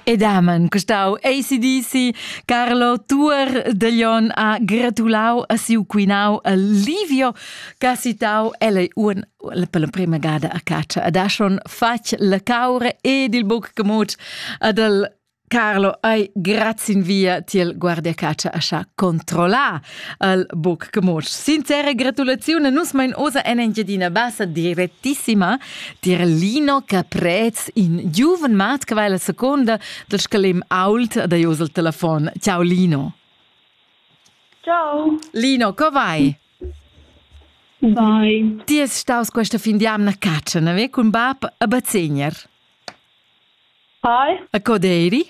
E damen custau ACDC Carlo Tuor de Leon ha gratulau a siu quinau Livio che citau el un per l'emprema gada a caccia ad Ashon fatg la caura ed il buc gemut ad el Carlo, ei grazin via tiel guardiacatscha ascha controllà al buc comoc. Sincere gratulazione nus mein osa en Engiadina Bassa direttissima tier Lino Caprez in giuven mat che va la seconda del scalem ault da jos al telefon. Ciao Lino. Ciao. Lino, co vai? Vai. Ti es staus questa fin di amna caccia, ne ve cun bab a Bazegner? Hai. E co d'eiri?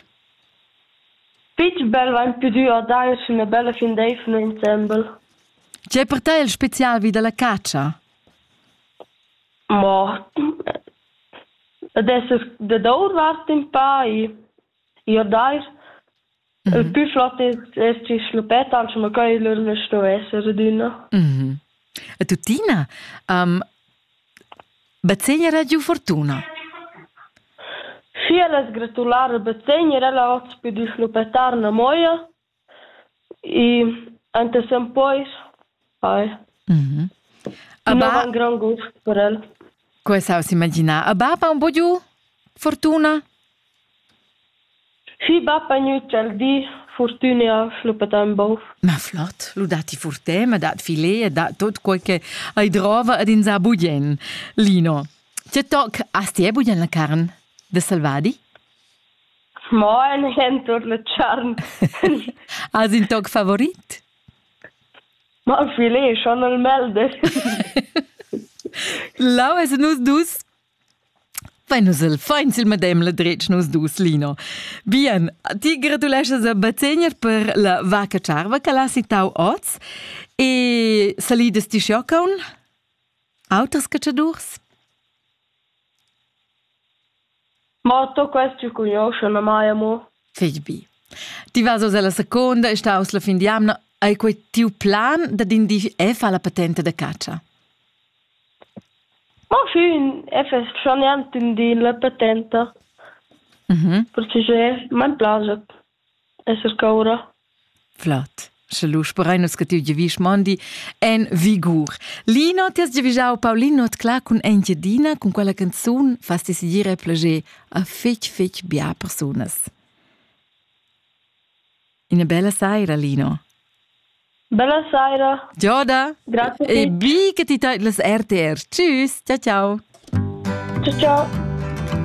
Fich bel vain pudü guardar üna üna bella findeivna insembel. Tg'è per te il special vi dalla catscha? Mo ed es dad our vart in pa i i a dair Il pü flot es es gist schluppet, anche mo quai lur nu sto esser adüna. E tuttina, um, bazegnera giu fortuna? Schi, el es gratular a bazegner, el ha hoz pudü schluppettar 'na moia e anta sem pois Hi. Mm -hmm. un grand goût per el. Quoi ça aussi imaginar. A baba un po' giù? Fortuna? Si baba niuc al di, fortuna fluppa un bov. Ma flott, lu dati furte, ma dat filet e dat tot quel che hai drova ad in sa bugen. Lino, che toc asti e bugen la carn de salvadi? Ma ein entor la charn. Has in toc favorit? Ma affilieschan al melder. Lau es nus dus Fai nus el fain sil medem la dretg nus dus, Lino. Bien, ti gratuleschas a Bazegner per la vaca charva che l'ha citau oz e salidas ti schiocaun? Auters cacciadurs? Mo tuo quest jeu cugnuoscha memai amo. Fich bi. Ti vas oz alla seconda e staus la fin d'jamna. Ei quei tiu plan dad in di e fa la patenta da catscha? Ma fin e fes schon niente in di la patenta. Mhm. Pertgei mein plaget. esser caura. Flot. Sche lu sperein nus che tiu giavisch mondi en vigur. Lino, ti has giavischau Paulino Tcla cun Engiadina cun quella canzun fas ti segir e plager a fetg fetg bia persunas. Ina bella saira, Lino. Bella saira. Gioda. Grazie. E bi che ti teit las RTR. Tschüss. Ciao ciao. Ciao ciao.